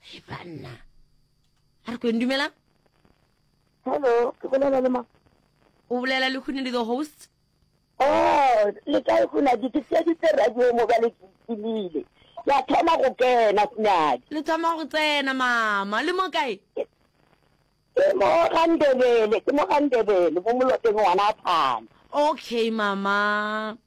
Hey, banna. A re kweng dumelang? Hello, ke bolela le ma. O bolela le Khune le the host. Oh, le kae Khunadi? Ke tšeditse radio mo bale ke itimile. Ke a thoma go kena Khunadi. Le thoma go tsena mama. Le mo kae? Ke mo ga Ndebele, ke mo ga Ndebele, mo moloteng ngwana a phana. Okay mama.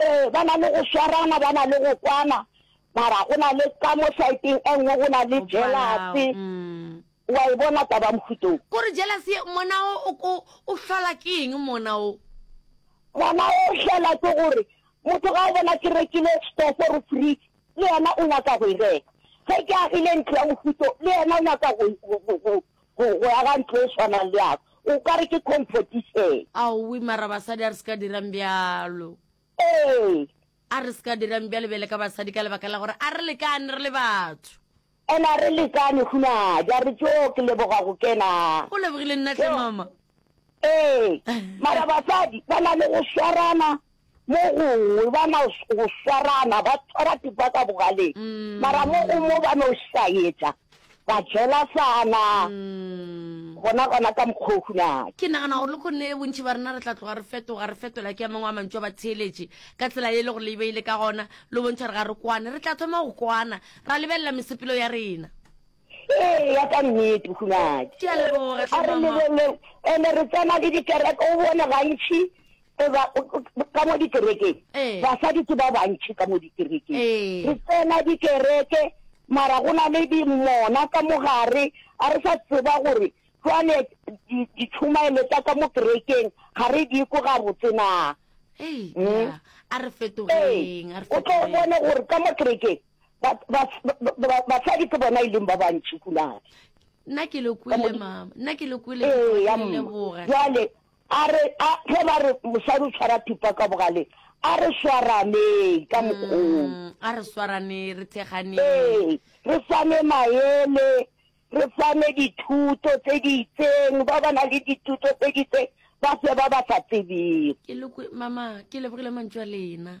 Ee, ba na le go swarana, ba na le go kwana, mara go na le ka mo saeteng e nngwe go na le jelase. Wa e bona taba mohuta o? Ko re jelase ye, mona o, o ko, o hlola ke eng mona o? Mona o hlola ke gore motho ga o bona ke rekile stofo or fridge, le yena o nyaka go e reka. Ge ke agile ntlo ya mohuta o, le yena o nyaka go, go, go, go, Go go aga ntlo e swanang le yago o ka re ke competition. Aowii mara basadi a re se ka dirang bjalo. Ee. A re se ka dirang bjalo bjale ka basadi ka lebaka la gore a re lekane re le batho. And a re lekane hunadi a re tjoo ke leboga go kena. O lebogile nna tlhe mama. Ee. Mara basadi ba na le go swarana Mo gongwe ba no go swarana, ba tshwara tipa ka bogaleng, mara mo go mo ba no šaetša, ba jelasana, gona gona ka mokgwa o hunake. Ke nagana gore le go ne bontši ba rena re tla tloga re fetoga, re fetola ke a mangwe a mantšu a batheeletši, ka tsela ye e le gore le e beile ka gona, le bontšha gore ga re kwane. Re tla thoma go kwana, ra lebelela mesepelo ya rena. Eya, ka nnete, hunadi. Ke a leboga, hle, mama. A re lebeleng, and-e re tsena le dikereke, o bone gantši ba, ka mo dikerekeng, basadi ke ba bantši ka mo dikerekeng. Re tsena dikereke, mara go na le dimona ka mo gare, ga re sa tseba gore jwale ditšhomaelo tša ka mo kerekeng ga re di kwe gabotse na. Eya, a re fetogeng, a re fetogeng. O tlo bone gore ka mo kerekeng, basadi ke bona e leng ba bantši kuladi nna ke le kwele mama nna ke le kwele jwale a re ge ba re mosadi o tshwara thupa ka bogale a re swaraneng ka mokgong mm, a re swarane re thekganeng ee re fane maele re fane dithuto tse di itseng ba ba na le dithuto tse di itseng ba fe ba ba sa tsebeng mama ke lebogile mantso a lena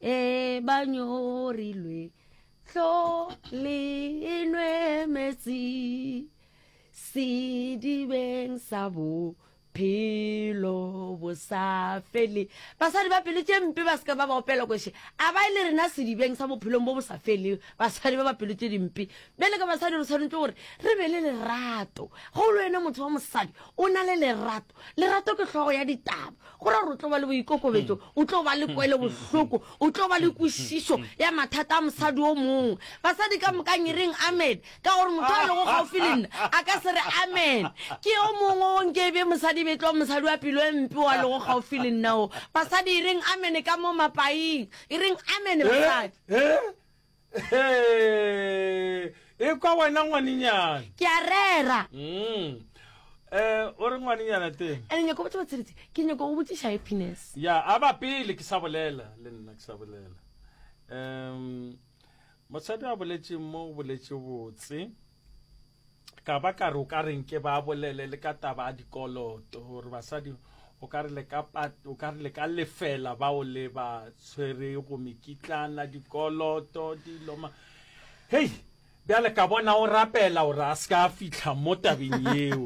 e ba nyorilwe tlo le enwe metsi sedibeng sa bophelo bo sa fele basadi ba pelo tše mpe ba seka ba ba opela kweshe a ba e le rena sedibeng sa bophelong bo bo sa fele basadi ba ba pelo tše dimpe bjale ka basadi re tshwanetse gore re be le lerato go le wena motho wa mosadi o na le lerato lerato ke hlogo ya ditaba go ra gore o tlo ba le boikokobetso mm. o tlo ba le kwele mm. bohloko o tlo ba le mm. kwešišo ya mathata a mosadi o mongwe basadi ka mokang e reng amen ka gore motho a lego gaufi le nna a ka se re amen ke yo mongwe o nke be mosadi be tlo mosadi wa pelo e mpe wa lego gaufi le nna o basadi e reng amen ka mo mapaing e reng amen eh, basadi eh, Hee, e kwa wena ngwanenyana. Ke a rera. Mm. Eh, o re ngwanenyana teng. Ene nyako botse batsiretse, ke nyako go botsiša happiness. Ya, a ba pele ke sa bolela, le nna ke sa bolela. Um, mosadi a boletše mo boletše botse. Ka ba ka re o ka re nke ba bolele le ka taba ya dikoloto gore basadi o ka re le ka o ka re le ka lefela ba o le ba tshwere go mekitlana dikoloto dilo ma hey bjale ka bona o rapela gore a se ka fihla mo tabeng yeo